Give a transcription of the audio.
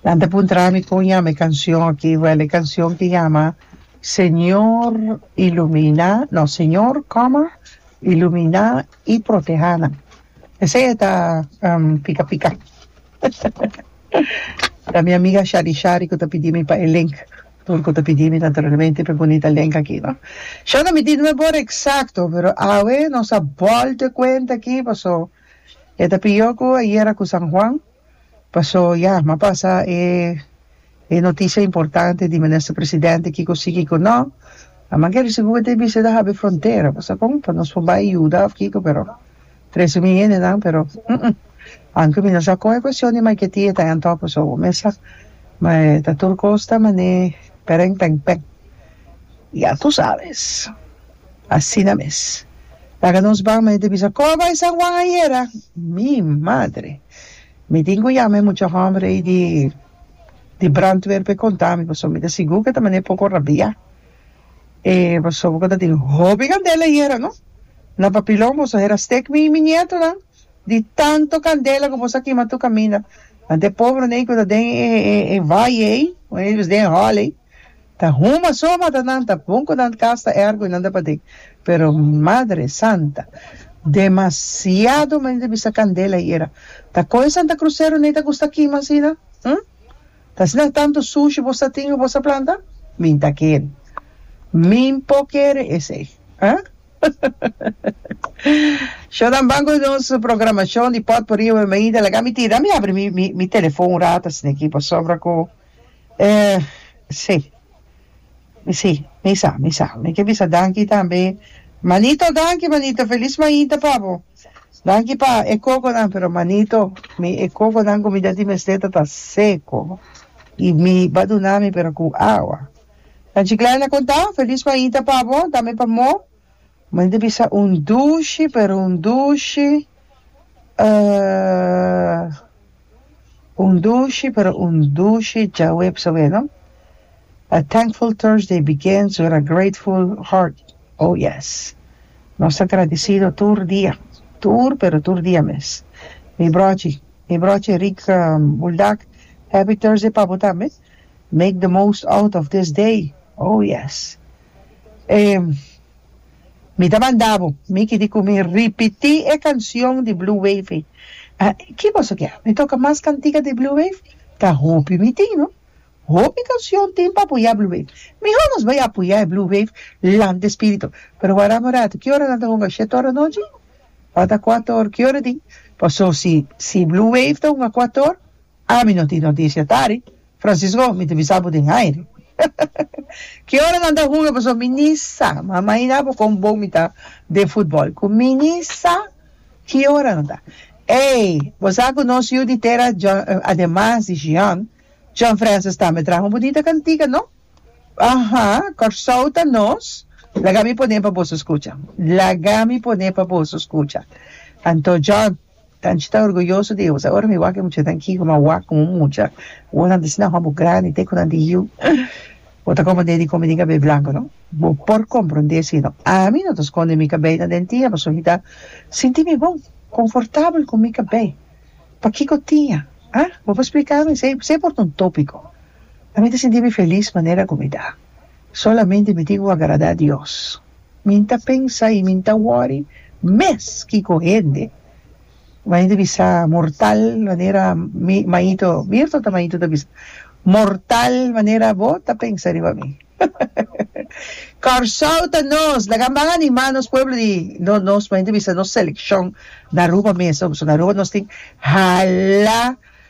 Nan ta puntra mi con yama e cancion aki. Well e cancion ki yama Señor ilumina, no Señor coma ilumina y proteha nan. Esey ta pica pica ta mi amiga Shari Shari cu ta pidi mi pa e link tur cu ta pidi mi naturalmente pa e bunita link aki no. Shana mi di no e bor exacto pero awe nos a bolta cuenta aki paso. E ta pió ku ayera ku San Juan, paso ya mi a pasa e e notisia importante di Minister Presidente kiko si kiko no. A manke risibu bo ta bisita hab'e frontera, paso kon pa nos por bai yuda of kiko pero trese mi hendenan pero humm anke mi no sa kon e kuestion di Maiquetía e ta en top paso bo mesa ma e ta tur kos ta manera peren peng peng ya tu sabes. Asina mes. Laga nos ban, mi ta bisa, Kor bai San Juan ayera? Mi madre! Mi tin cu yama e mucha homber ey di di brandweer pa e conta mi, pasobra mi ta sigur cu e ta manda e poco rabia. E pasobra cu ta tin hopi candela ayera, no? Na papilon boso hera stek mi y mi nietonan di tanto candela cu boso a kima tur caminda. Ante e pobernan ey cu ta den e e e valle ey, cu ey ta bisa den e hall ey. Ta huma so mata nan ta bon cu nan casta ergo y nan ta patin pero madre santa demasiado mende ta bisa candela y era ta coge santa cruzero ni ta gusta kima asina hm ta asina tanto sushi vos ta tin y vos ta planta mi ta kere min po kere esey hahahaha sho nan ban cu nos programacion di potpourri hoy mainta laga mi tira mi abri mi mi mi telefon un rato asina aki pasobra cu Eh, sí. Sí, mi sa, mi sa. Mi ke bisa danki tambe. Manito, danki, manito. Felis mainta pa bo. Danki pa e kokonan, pero manito, mi e kokonan ku mi ta di mester ta ta seko. I mi ba duna mi pero ku awa. Nan Chiklayana konta, Felis mainta pa bo, tambe pa Mo. Mei di bisa un dushi pero un dushi ahh un dushi pero un dushi djawe bisa wea no a thankful Thursday begins with a grateful heart oh yes nos ta agradecido tur dia tur pero tur dia mes mi brochi mi brochi Rick Buldak happy Thursday pa bo tambe make the most out of this day oh yes. E mi ta manda bo, mi kiri ku mi ripití e kanshon di Blue Wave ei. Ki boso ke? Mi toka mas kantika di Blue Wave? Ta hopi mi tin, no. Hopi kanshon tin pa apoyá Blue Wave. Mihó nos bai apoyá e Blue Wave lanta e spiritu. Pero waranan un ratu, ki ora nan ta hunga? Shet or di nochi? Ota kuator? Ki ora di? Paso si Blue Wave ta hunga kuator, Ami no tin noticia tari. Francisco, mi ta bisa bo den aire. Ki ora nan ta hunga paso mi ni sa. Ma mahina bo con bon mi ta den futbol cu mi ni sa ki ora nan ta. Ey, bo sa cu nos yu di tera ademas di Jean, John Francis tambe traha un bunita cantica, no? Aha, Corsou ta nos. Laga mi pone pa boso scucha. Laga mi pone pa boso scucha. Anto John, Tanchi ta orguyoso di Eus awor mi wak e muchanan aki ku nan wak komo mucha wou nan ta si nan homber grandi te ku nan di yu bo ta komand'e di komid'e kabei blanko no bo por komprond'e si no ami no ta skond'e mi kabei na den tia paso mi ta sinti mi bon konfortabel ku mi kabei pakiko tia ha bo por splika mi esei esei por ta un topiko ami ta sinti mi felis manera ku mi ta solamente mi tin ku agrada Dios Min ta pensa y min ta worry mes kico hende maña ta bisa mortal manera mañito Mirto ta mañito ta bisa mortal manera bo ta pensa riba mi Kòrsou ta nos laga ban anima nos pueblo di no nos maña ta bisa nos seleccion na Aruba mesa nos tin hala